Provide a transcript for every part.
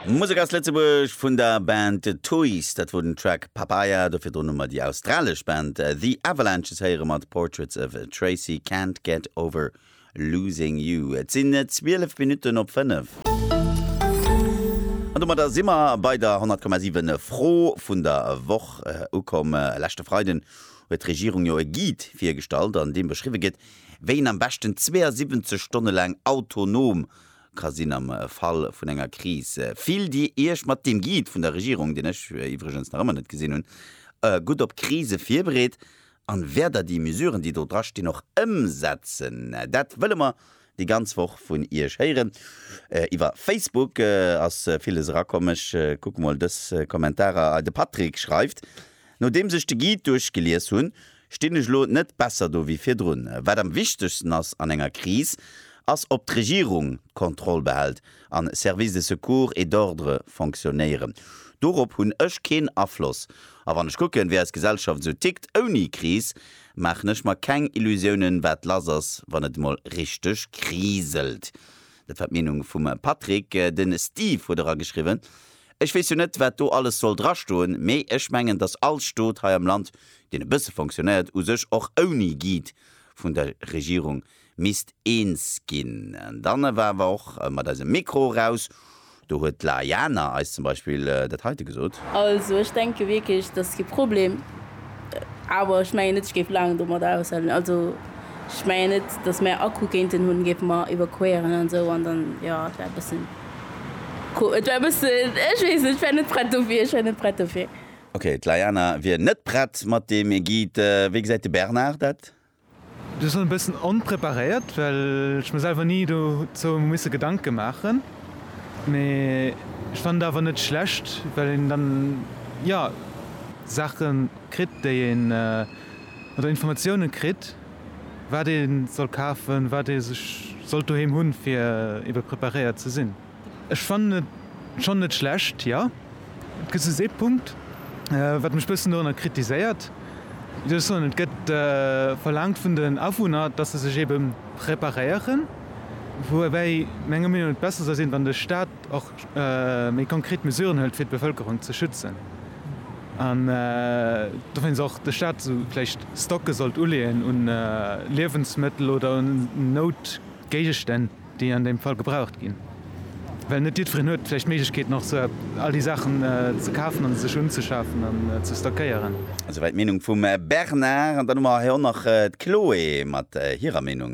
Musek aus Lëtzebuerg vun der Band Toys. Dat wor den Track Papaya. Dofir drun hu mer déi australesch Band The Avalanches héiere mat Portraits of Tracy, Can't Get Over Losing You. Et sinn 12 Minutten op 5. An domadder si mer bei der 100,7 Fro vun der Woch ukomm. Leschte Freiden huet d'Regierung jo e Guide virgestallt, an deem beschriwwe gëtt, wéi een am beschten 72 Stonne laang autonom ka sinn am Fall vun enger Kris. Fillt Dir Iech mat deem Guide vun der Regierung, deen ech iwwregens nach ëmmer net gesinn hunn, gutt op Krise virbereet? An wäert Der déi Mesuren, déi do dra stinn, och ëmsetzen? Dat wëlle mer déi ganz Woch vun Iech héieren. Iwwer Facebook ass villes erakomm. Ech kucke mol dës Kommentarer hei. De Patrick schreift, Nodeems ech de Guide duerchgelies hunn, Stinn ech elo net besser do wéi virdrun? Wat am wichtegsten ass an enger Kris, ass ob d'Regierung d'Kontroll behält an Services de secours et d'ordre fonctionnéieren. Dorop hunn ech keen Afloss. A wann ech kucken, wéi eis Gesellschaft esou tickt ouni Kris, maachen ech mer keng Illusiounen, wat lass ass, wann et emol richteg kriselt. Dat war d'Meenung vum Patrick. De Steve huet era geschriwwen. Ech weess jo net, wat do alles soll drastoen, mee ech mengen, dass all Stot hei am Land, deen e bësse fonctionnéiert, u sech och ouni Guide vun der Regierung misst eens ginn. An dann awer awer och mat eisem Mikro eraus, do huet d'Laïana eis zum Beispill dat heite gesot. Also ech denke wierklech, dass kee Problem, awer ech mengen net, ech géif laang domadder aushalen. Also ech mengen net, dass mäi Akku kéinten hunn, géife mer iwwerqueren an esou, an dann, jo, et wär e bëssen. Cool, et war bëssen, ech weess net, ech war net prett dofir, ech war net prett dofir. Ok, d'Layana wier net prett mat deem Guide. Wéi gesäit de Bernard dat? Ech war schonn e bëssen onpreparéiert, well ech mir selwer ni dozou musse Gedanke maachen. Mee ech fannen et awer net schlecht, well een dann, jo, Saache kritt, déi een, oder Informatiounen kritt, Wat ee soll kafen, wat ee sech sollt doheem hunn, fir ebe preparéiert ze sinn. Ech fannen et schonn net schlecht, jo. Et gëtt just ee Punkt, wat mech bëssen dorunner kritiséiert. Wéi soll ech soen, et gëtt verlaangt vun den Awunner, datt se sech ebe preparéieren, woubäi menger Meenung no et besser soll sinn, wann de Staat, och méi konkret Mesuren hëlt fir d'Bevëlkerung ze schützen an dowéinst och de Staat vläicht Stocke sollt uleeën u Liewensmëttel oder un Noutgéigestänn, déi an deem Fall gebraucht ginn, well net jiddwereen huet vläicht d'Méiglechkeeten och esou all déi Saachen ze kafen an sech unzeschafen an ze stockéieren. Esouwäit d'Meenung vum Bernard. An dann hu mer hei och nach d'Chloé mat hirer Meenung.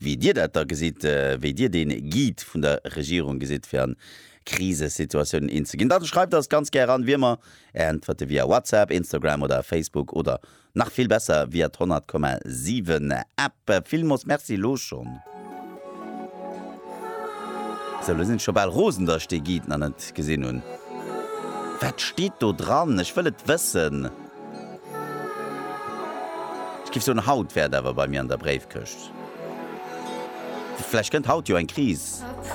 wéi Dir dat da gesitt, wéi Dir dee Guide vun der Regierung gesitt, fir an Krisesituatiounen een ze ginn, da schreift eis ganz gär an, wéi ëmmer, Är Äntwerte via WhatsApp, Instagram oder Facebook oder nach vill besser via d'Honnert Komma siwen App. Villmoos Merci elo schonn. Sou, elo sinn ech scho bal rosen, datt ech dee Guide nach net gesinn hunn. Wat steet do dran? Ech wëll et wëssen! Ech giff soen, haut wär et awer bei mir an der Bréifkëscht. Vläicht kënnt haut jo eng Kris.